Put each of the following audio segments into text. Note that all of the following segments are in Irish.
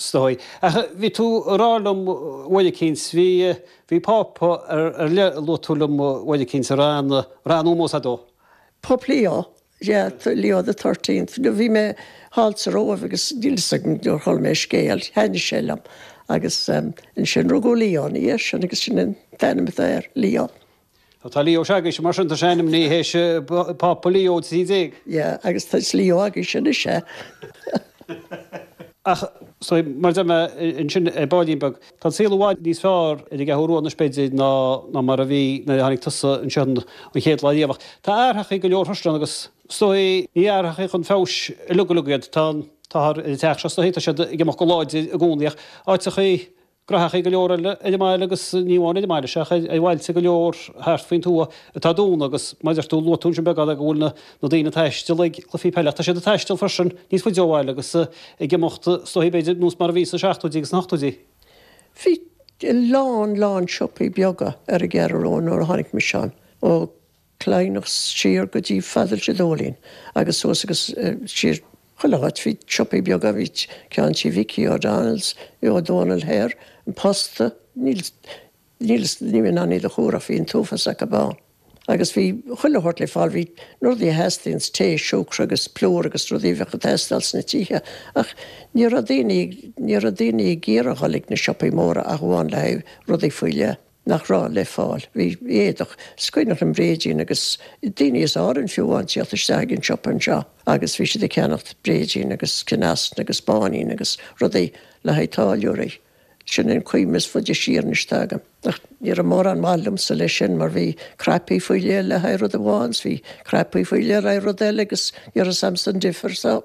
'S dóigh. Ach bhí tú ag rá liom uair eicínt, bhí, bhí Pápa ar leith a luaigh tú liom uair eicínt, a raibh an, a raibh an-ómós agat dó. Pápa Leo, yeah, Leo the thirteenth. No, bhí mé thall sa Róimh agus níl fhios agam, nuair a chuala mé a scéal, thaitnigh sé liom. Agus ansin rugadh Leo, ina dhiaidh sin agus sin an t-ainm atá air, Leo. Tá Leo, sea, agus, mar sin, tá sé ainmnithe as Pápa Leo XIII. Yeah, agus tá is Leo againn sin is ea. Ach, sea, mar a deir mé, ansin ar baillín beag, tá an saol i bhfad níos fearr ar an gCeathrú Rua, an Spidéal, ná mar a bhí nuair a tháinig tusa anseo an chéad lá riamh. Ach tá athraíochaí go leor thusa ann agus, is dóigh, ní athraíochaí chun feabhais uilig uilig iad. Tá an t-ádh ar an teach seo, sea, tá siad ag imeacht go láidir i gcónaí ach áiteachaí, graitheachaí go leor eile ar an mbaile agus ní amháin ar an mbaile ach ar bhailte go leor thart faoin tuath atá dúnta agus mar a dúirt tú, luaigh tú ansin beagán agat go bhfuil na daoine ag taisteal ag cluifí peile ach tá siad ag taisteal freisin níos faide ó bhaile agus ag imeacht is dóigh b'fhéidir nós mar a bhí sna seachtóidí agus na hochtóidí. Bhí a lán lán siopaí beaga ar an gCeathrú Rua nuair a tháinig mise ann ó. Chladhnach, siar go dtí fhad le Trá an Dóilín agus suas agus siar chuile áit. Bhí siopaí beaga, bhí ceann tigh Mhicí O'Donnells, bhí Ó Dónaill thoir, An Posta, níl fhios, níl mé in ann iad a chomhaireamh, bhí an t-uafás acu ann. Agus bhí chuile shórt le fáil, bhí na rudaí a theastaíonns, tae, siúcra agus plúr agus rudaí a bheadh ag teastáil sna tithe. Ach ní raibh daoine, ní raibh daoine ag iarraidh a dhul ag na siopaí móra ach amháin le haghaidh rudaí faoi leith. nach raibh le fáil. Bhí éadach is cuimhneach, an bréidín agus daoine as Árainn fiú amháin tíocht isteach ag an siopa anseo agus bhí siad ag ceannacht bréidín agus ceanneasna agus báinín agus rudaí le haghaidh táilliúraí. Sin an chuimhne is faide siar anois atá agam. Ach ní raibh mórán maith ionamsa leis sin mar bhí cnaipí faoi leith le haghaidh rud amháin 's bhí cnaipí faoi leith le haghaidh rud eile agus ní raibh a fhios agamsa an difear so.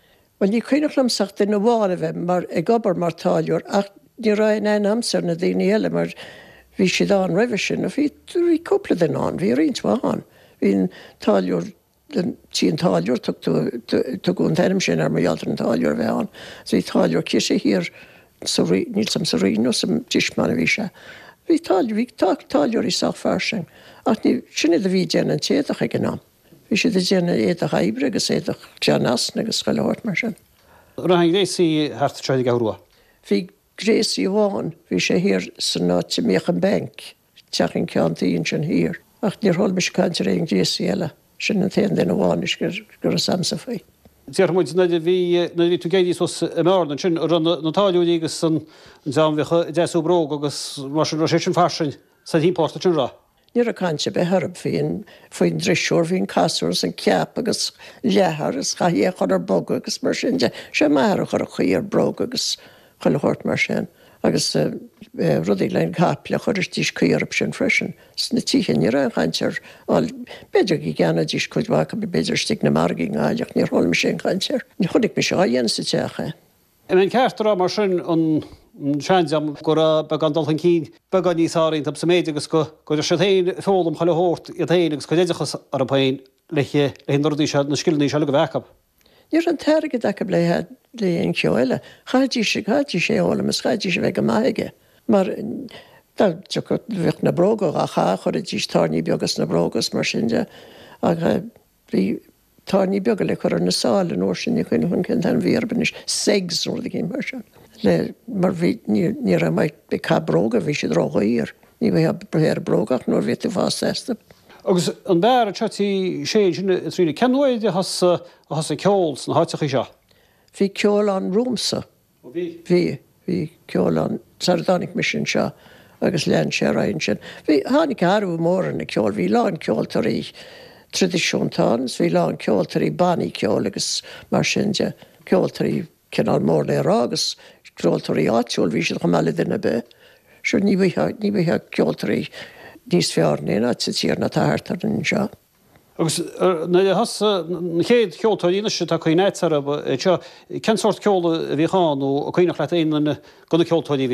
Bhuel, ní cuimhneach liomsa ach duine amháin a bheith mar, ag obair mar táilliúir ach ní raibh aon aithne agamsa ar na daoine eile mar bhí siad ann roimhe sin ach bhí, bhí cúpla duine ann, bhí roinnt mhaith ann. Bhí an táilliúir, an, tigh an táilliúir, tugtaí, tugadh an t-ainm sin air mar gheall ar an táilliúir a bheith ann. So bhí táilliúir cíosa thiar sa Rí, níl fhios agam sa Rinn nó sa Tismeáin a bhí sé. Bhí táilliúir, bhí táilliúirí sách fairsing ach ní, sin iad a bhí ag déanamh an t-éadach ag an am. Bhí siad ag déanamh éadach oibre agus éadach ceanneasna agus chuile shórt mar sin. Raibh aon ghréasaí thart anseo ar an gCeathrú Rua? Bhí gréasaí amháin, bhí sé thiar san áit a mbíodh an bank, teach an ceann tuí ansin thiar. Ach níor chuala mise caint ar aon ghréasaí eile. Sin an t-aon duine amháin anois go raibh a fhios agamsa faoi. Déarfaidh muid, nuair a bhí, nuair a bhí tú ag éirí suas i mBearna ansin, a raibh na táilliúirí agus an dream a bhíodh ag deasú bróg agus mar sin, raibh sé sin fairsing sa thimpeallacht ansin, a raibh? Ní raibh caint ar bith orm féin faoin drisiúr, faoin gcasúr is an ceap agus leathar is chaithfeá é a chur ar bogadh agus mar sin de. Sé m'athair a chuir an chaoi ar bróga agus chuile shórt mar sin agus rudaí le na caiple a chuirtidís caoi orthu sin freisin. Sna tithe ní raibh aon chaint ar, bhuel b'fhéidir go gceannaídís cuid mhaith acu b'fhéidir istigh ag na margaí i nGaillimh ach níor chuala mise aon chaint air. Ní chonaic mise á dhéanamh sa teach é. An mbeadh an ceart a rá mar sin, an seandream, go raibh beagán dul chun cinn beagán níos ar a n-aird sa méid agus go gcuiridís féin foghlaim chuile shórt iad féin agus a gcuid oideachas orthu féin le haghaidh na rudaí seo, na scileanna seo a bheith acu? Ní raibh an t-airgead acu le haghaidh aon cheo eile. Chaithfidís, chaithfidís é a fhoghlaim is chaithfidís a bheith go maith aige mar dá dtiocfadh, bheadh na bróga dhá gcaitheamh, chuirfidís tairní beaga sna bróga is mar sin de ach. Bhí tairní beaga le cur ar na sáil an uair sin, ní chuimhním cén t-ainm a bhí orthu anois, segs nó rud éigin mar sin, le, mar bhí, ní, ní raibh muid ag caitheamh bróga, bhí siad ró-dhaor, ní bheadh athrú ar bhróga ach nuair a bhí tú ag fás astu. Agus an beár anseo Tigh Sé ansin i Tree na Cionn Uaighe a thosaigh ceol sna háiteachaí seo. Bhí ceol ann romhamsa, Ó bhí. Bhí. Bhí ceol ann sara dtáinig mise anseo agus lean sé ar aghaidh ansin. Bhí, tháinig athrú mór ar an gceol, bhí lán ceoltóirí tradisiúnta ann is bhí lán ceoltóirí bannaí ceoil agus mar sin de, ceoltóirí cineál mór le rá agus ceoltóirí áitiúla, bhí siad chomh maith le duine ar bith. Sure ní bhfuightheá, ní bhfuightheá ceoltóirí níos fearr in aon áit sa tír ná atá thart orainn anseo. Agus nuair a thosaigh na chéad cheoltóirí anois atá cuimhne agat orthu anseo, cén sórt ceol a bhíodh ann nó an cuimhneach leat aon duine de na ceoltóirí a bhíodh ann?